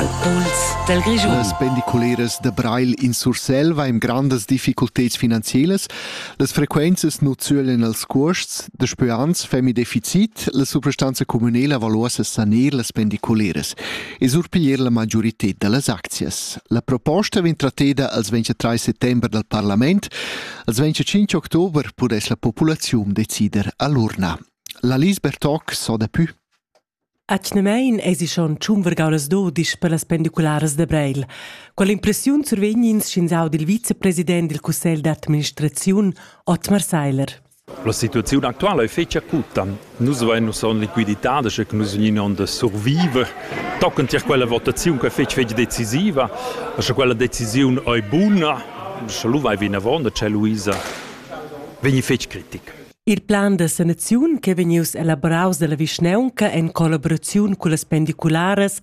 al puls dal Grischun. Las pendiculeras da Breil in Sursel va in grandas difficulteds finanzielas. Las frequenzas nu zölen als cuosts, da spüans femi deficit, la suprastanza communela valuosa saner las pendiculeras e surpiglier la magiorited da las aczias. La proposta vegn tratteda als 23 settember dal parlament, als 25 october pudess la populaziun decider all'urna. La Lisbeth Toc so da pü. Atgnamein eisi schon tschun vargaulas dudisch per las pendicularas da Breil. Quell'impressiun survegn ins sch'ins audi il vicepresident dil cussegl d'administraziun, Otmar Seiler. La situaziun actuala è fetg acuta. Nus avein nus on liquiditad, sche nus vegnin on da surviver. Tochen tier quella votaziun che è fetg fetg decisiva, sche quella decisiun è buna, sche lu vai vinavon da Luisa, vegni fetg critic. Il plan da sanaziun ch'è vegnius elaboraus dalla vischnaunca en collaboraziun cullas pendicularas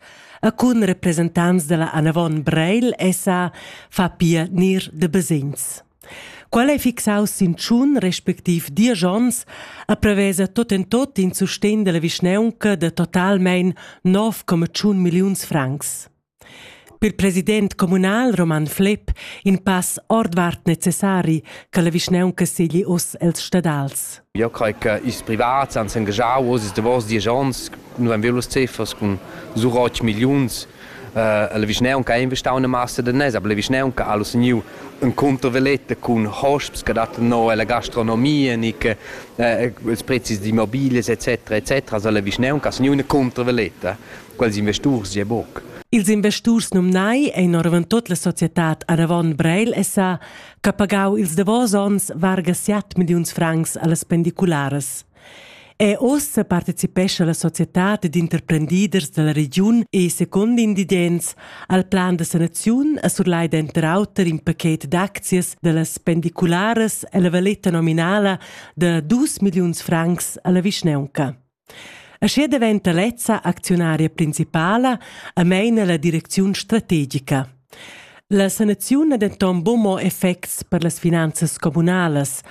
e cun representants dalla Anavon Breil SA fa pia nir de basegns. Qual ei fixaus sin tschun respectiv diesch onns a prevesa tot en tot in sustegn dalla vischnaunca de totalmein 9,1 milliuns francs. Per president communal Roman Flepp in pass ordvart necessari che la vischnaunca segli oz els stadals. Io crei che ils privats han s'engagau oz ils davos diesch onns. Nous haben velos ceffers cun sur 8 milliuns. Uh, la vischnaunca ha investau una massa de nes, aber la vischnaunca ha seniu un controveletta cun hosps che dattan no alla gastronomia, nic, uh, ils prezis d'immobilie etc etc. Also la vischnaunca ha seniu una controveletta. quels investurs gie buc. Ils investurs numnai ein oravon tut la societad Arevon Breil SA che pagau ils davos onns varga 7 milliuns francs allas pendicularas. E ossa participescha la societad ed interprendiders dalla regiun e, secondo invidents, al plan da sanaziun a surlai denter auter in paquet d'aczias dallas pendicularas e la valeta nominala da dus milliuns francs alla vischneunca. Aschia daventa lezza acziunaria principala e meina la direcziun strategica. La sanaziun ha denton buc mo effects per las finanzas communalas.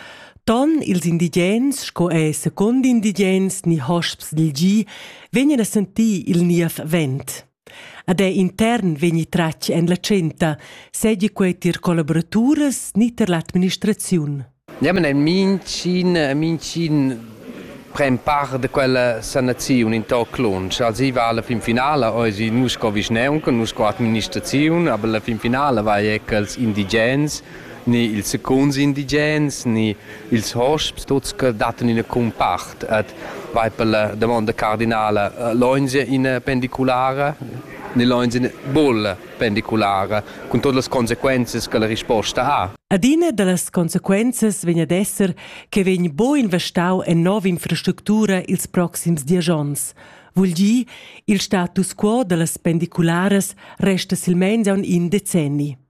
Ton ils indigens sco ei secund indigens ni hosps dil gi vegnan a sentir il niev vent. Ad ei intern vegni tratg en la tschenta, seigi quei tier collaboraturas ni tier l'administraziun. Niamen ein mincin, mincin pren part de quella sanaziun in toc lunsch. Also i va alla fin finala, oisi nus sco vischneunca, nus sco administraziun, aber la fin finala vai ecco als indigens ni ils secuns indigens ni ils hosps tuts che dattan ina cumpart et vai per la domanda cardinala loins in pendiculara ni loins in bulla pendiculara cun todas las consequences che la risposta ha. Adina da las consequenzas vegn ad esser che vegn bo investau en nova infrastructura ils proxims dies onns. Vul dir, il status quo da las pendicularas resta silmeins aun in decenni.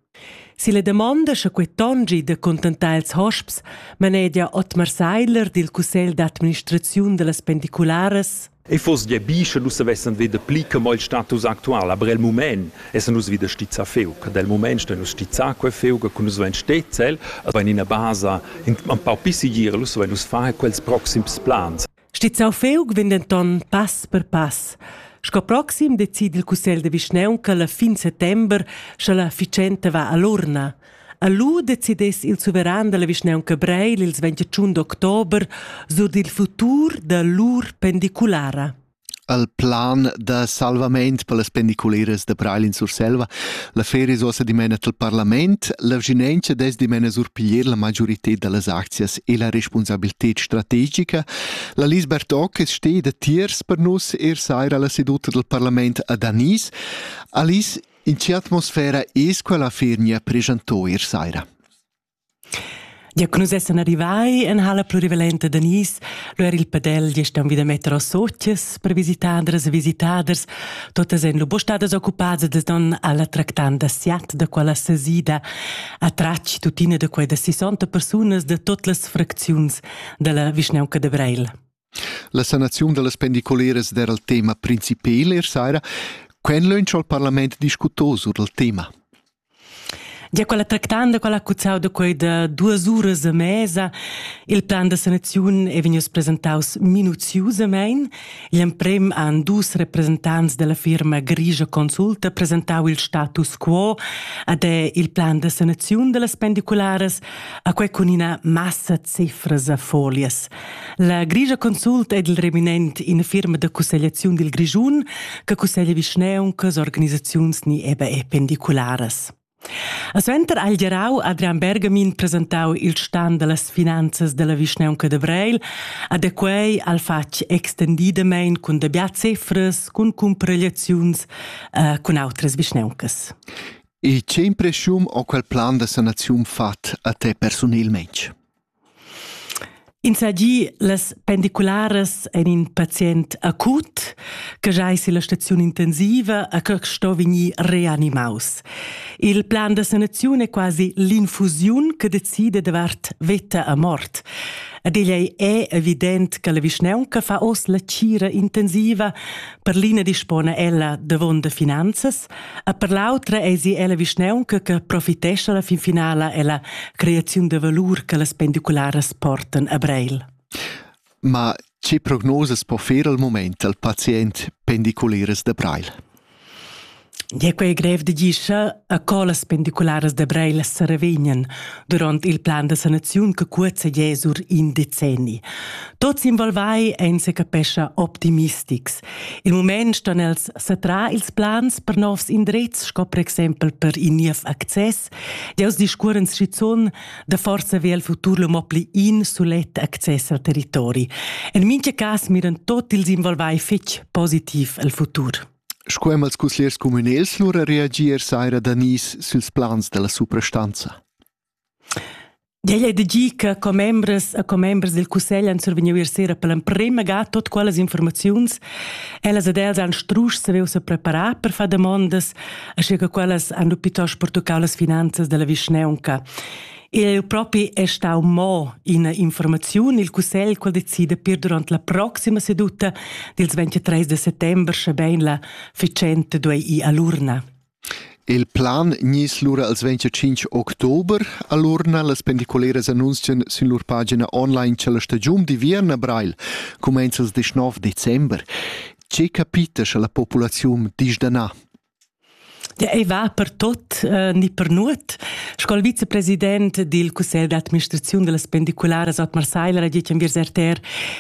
Silla damonda sche quei tongi da contentar ils hosps manegia Otmar Seidler dil cussegl d'administraziun dallas pendicularas E foss gia bi sche nus savessen veder pli che mo il status actual, aber el mument essan nus wieder stizza feu, che dal mument stein nus stizza quei feu, che nus vein stezzel, aber in ina basa in un pau più sicur, nus vein nus far quels proxims plans. Stizzau feug vegn denton pass per pass. Sco proxim decide il cussegl de vischnaunca la fin settember, sche la ficenta va all'urna. A lu decidess il suveran della vischnaunca Breil ils 21 d'october sur dil futur da lur pendiculara. al plan da salvament per las pendiculeras da Breil in Surselva. La feria è ossa dimena al parlament. La vginenza des dimena surpiglier la majorität da las aczias e la responsabilität strategica. La Lis Bertocches steht da tiers per nus er saira alla seduta del parlament a Danis. Alice, in che atmosfera es quella fernia presentò er saira? Gia che nus essan arrivai en halla plurivalenta da Nice, lu era il padel gest aunc vida metter a socias per visitadras e visitaders. Totas ein lu buca stadas occupadas da don alla tractanda siat da quella sesida. A tratg tuttina da quei da 60 persunas da tot las fracziuns dalla vischnaunca de Breil. La sanaziun dallas pendicoleras era il tema principal er saira. Quen lönch al parlament discutò sur il tema? Gia quella tractanda quella ha cuzzau da quei da duas uras e mesa. Il plan da sanaziun ei vegnius presentaus minuziusamein. Igl emprem han dus representants dalla firma Grigia Consulta presentau il status quo ad è il plan da sanaziun dallas pendicularas, a quei cun ina massa cifras a folias. La Grigia Consult è il reminent in firma da cussegliaziun dil Grischun che cusseglia vischneuncas, organisaziuns ni eben pendicularas. A suenter ha il gerau Adrian Bergamin presentau il stan dallas finanzas dalla vischneunca de Vreil, a de quei al fatg extendidamein cun dabia cifras, cun cumparegliaziuns, eh, cun outras vischneuncas. E che impreschiun ho quel plan da sanaziun fat a te persunelmaing? Insagi las pendicularas en in pazient acut che giais illa staziun intensiva a che sto vegnir reanimaus. Il plan da sanaziun è quasi l'infusiun che decide davart veta a mort. Ad ella è evident che la vischnaunca fa oz la cira intensiva per l'ina dispona ella davon da finanzas E per l'autra eisi ella vischnaunca che profitescha la fin finala ella creaziun de valur che las pendicularas portan a Breil. Ma che prognosas po fer al moment al pazient pendiculares de Breil? Ja quei grev de gischa a co las pendicularas de Breil se revegnan durant il plan de sanaziun che cuozza gesur in decenni. Tots involvai ein se capescha optimistics Il mument ston els satrar ils plans per novs indrezs, sco per exempel per in niev access. Deus discuoren schizun da forza ve al futur lo mo pli in sulet access al territori. En mincha cas miran tot ils involvai fetg positiv al futur. Sco hem als cuslers communals lura reagir saira Danis süls plans della suprastanza. Igl ei da gir che commembras e commembers dil cussegl han survegniu ier sera per l'emprema ga tut quellas informaziuns. Ellas ed els han strusch saviu sepreparar per far damondas, aschia che quellas han lu plitost pertuccau las finanzas dalla vischnaunca. Igl propi è stau mo ina informaziun. Il cussegl quel decida pir durant la proxima seduta dils 23 de settember, sche bein la fitschenta duei ir a l'urna. Il plan gniss lura als ventg e tschinch october, alura las pendiculeras annunzian sün lur pagina online cha la stagiun d'inviern a Breil cumainza ils deschnov december. Che capita scha la populaziun disch da na? Ja, ei va per tot eh, ni per nuot. Sco il vicepresident dil cussegl d'administraziun dellas pendicularas Otmar Seiler ha ditg en Viers RTR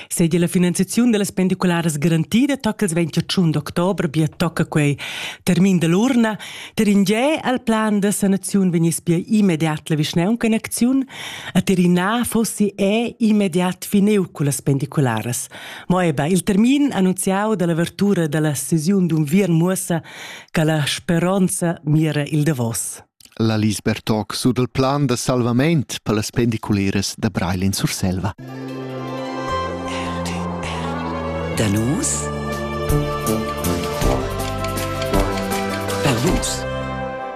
seigi la finanziaziun dallas pendicularas garantida tocca il 21 d'october bia tocca quei termin dall'urna ter in ge al plan da sanaziun vegniss bia immediat la vischnaunca in acziun a Tirina fossi è immediat fineu cullas pendicularas mo eba il termin annunziau dall'avertura dalla sesiun d'unviern muossa che la speronza mira il davos La Lis Bertoc sur dal plan da salvament per las pendiculeras da Breil in Surselva. Da nus per vus.